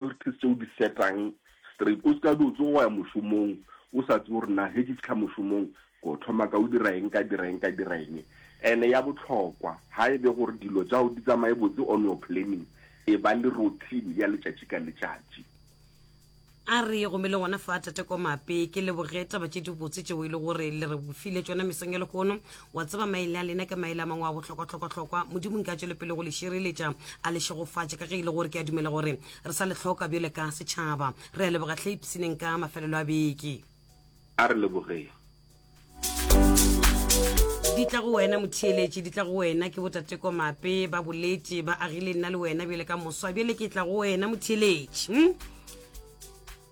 Priorities tše o di setang straight, o se ka be o tsoga wa ya mošomong o sa tsebe gore na he ke fihla mošomong ko thoma ka o dira eng, ka dira eng, ka dira eng. And ya bohlokwa ha e be gore dilo tša gago di tsamaye botse on your planning, e ba le routine ya letšatši ka letšatši. A re go mele gona fa Tate Komape, ke leboge taba tše dibotse tšeo e le gore le re file tšona mesong ya lehono. wa tseba maele a lena ke maele a mangwe a bohlokwa-hlokwa-hlokwa modimo nka tšwele pele go le šireletša a le šegofatše ka ge e le gore ke a dumela gore re sa le hloka bjole ka setšhaba re a leboga hle ipsineng ka mafelelo a beke a re lebogeng di tla go wena motheeletše di tla go wena ke botateko mape ba bolete ba agile nna le wena bjele ka moswa bjele ke tla go wena motheeletše hm?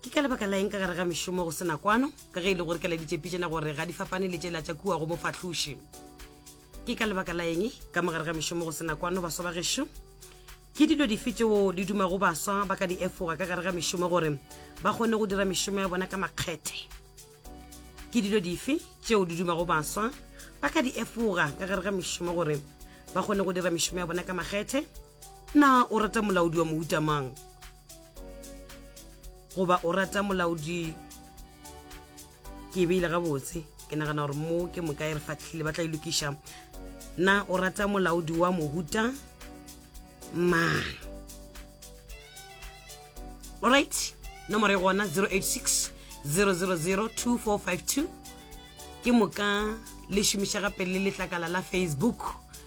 ke ka lebaka la eng ka gare ga mešomo go sena kwano ka ge e le gore kela ditšepitšena gore ga di fapane le tšela tša kua go mofahloši ke ka lebaka la eng ka mogare ga mešomo go sena kwano baswa ba gešo ke dilo dife tšeo di dumago baswa ba ka di efoga ka gare ga mešomo gore ba kgone go dira mešomo ya bona ka makgethe ke dilo dife tšeo di dumago baswa ba ka di efoga ka gare ga mešomo gore ba kgone go dira mešomo ya bona ka makgethe Na o rata molaodi wa mohuta mang? Goba o rata molaodi? Ke e beile gabotse. Ke nagana gore mo ke moka e re fatlhile ba tla ilokiša. E Na o rata molaodi wa mohuta mang? Alright, nomoro e gona 086 000 2452 ke moka le šomiša gape le letlakala la Facebook.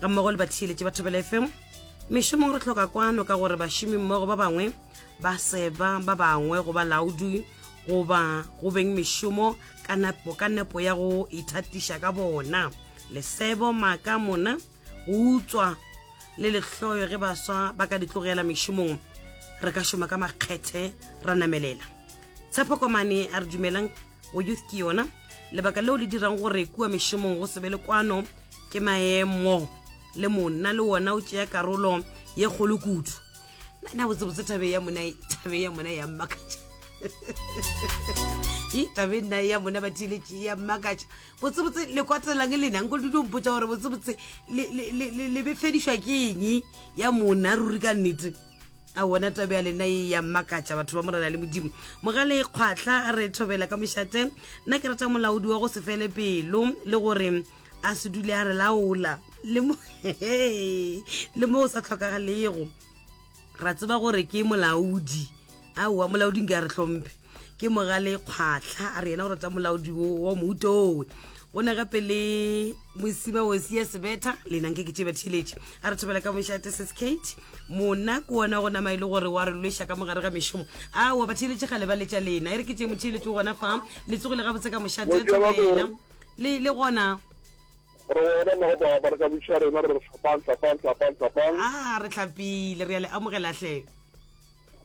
ga mmogo le batheeletše ba thobela fm mešomong re tlhoka kwano ka gore bašomi mmogo ba bangwe ba seba ba bangwe go ba laudi goba go beng mešomo ka nepo ka nepo ya go ithatiša ka bona lesebo maaka mona go utswa le lehloyo ge baswa ba ka di tlogela mešomong re ka šoma ka makgethe ra namelela tshepo komane a re dumelang o youth ke yona lebaka leo le dirang gore kua mešomong go sebe le kwano ke maemo le monna le wona o tšea karolo ye kgolo kudu nna botsebotse thabe ya mona thabe ya mona ya mmakatša e tabe nna ya mona ba thiletše ya mmakatša botsebotse le kwatelang e lenang ko dilo mpotsa gore botsebotse le befedišwa ke eng ya mona ruri ka nnete a wona tabe ya lena e ya mmakatša batho ba morena le modimo mogale e kgwatlha re thobela ka mošate nna ke rata molaodi wa go se fele pelo le gore a se dule a re laola le mo le mo o sa tlhokagalego ra tseba gore ke molaodi aowa molaodi nka re tlhomphe ke mogale kgwatlha a re yena o rata molaodi wa mohuta owe go ne gape le mosima osi ya sebetha lenang ke ke tšeba theletše a re thobela ka mošate sis kate mona ke ona go nama e le gore wa re lweša ka mogare ga mešomo aowa batheletše ga le ba letša lena e re ke tše motheletše o gona fa le tsogile gabotse ka mošate a thobela le le gona re wena mo ba ba ka butša rena re hlapang hlapang hlapang hlapang ah re hlapile re ya le amogela hle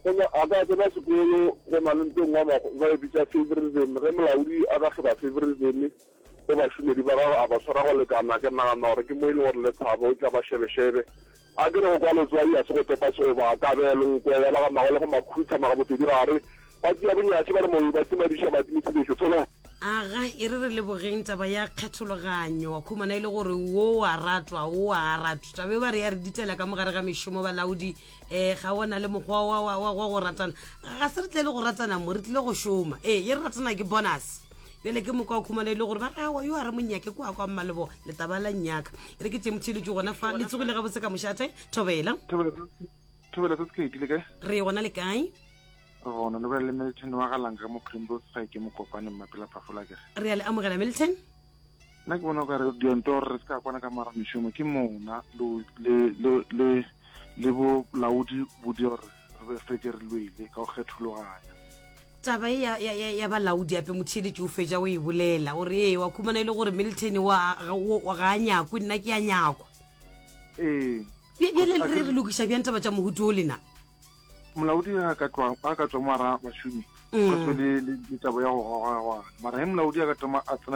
Gomme a ka tsena sekolo go na le nto e nngwe ba e bitša favouritism. Ge molaodi a ka hloka favouritism go bašomedi ba gagwe, a ba swara go lekana, ke nagana gore ke mo e lego gore Lethabo o tla ba šebešebe. Akere go kwa letswai ga se go topa segoba, a ka bea lenkwe, ya ba ga magole gomme a khutha magabotedi gare. Ba tšea bonyatši ba re mobe, ba timadiša matimithibeso. Tshola! Aga, e re re lebogeng taba ya kgethologanyo. Wa khumana e le gore wo wa ratwa, wo wa a ratw. Taba e ba re ya re ditela ka mo gare ga mešomo, balaodi. um ga ona le mokgwa wa go ratana ga se re tle le go ratana mo re tlile go šoma ee ye re ratana ke bonus bjale ke moka o khumana e le gore ba re awa yo a re monyake kwa kwa mmalebo letaba la nnyaka e re ke tšemotšheletso gona fa le tsogile gabotse ka mošate thobela thobela se sekete le kae re gona le kae gona le bjale le milton wa galanka mo primrose ga ke mo kopane mmapela phafola kere re a le amogela milton Nna ke bona o ka re dionto gore re se ka kwana ka mara mešomo ke mona le bolaodi bo di gore re be feke re lwele ka go kgethologanya taba e ya balaodi ape motheeletši o fetša o e bolela o re ee wa khumana e le gore milton ga a nyakwe nna ke a nyakwa ee bjale re re lokiša bjang taba tša mohutu o lena molaodi a ka tswa mo ara bašomi mm. ka tswe le taba ya go gogagwa mara ge molaodi a ka tama a tsena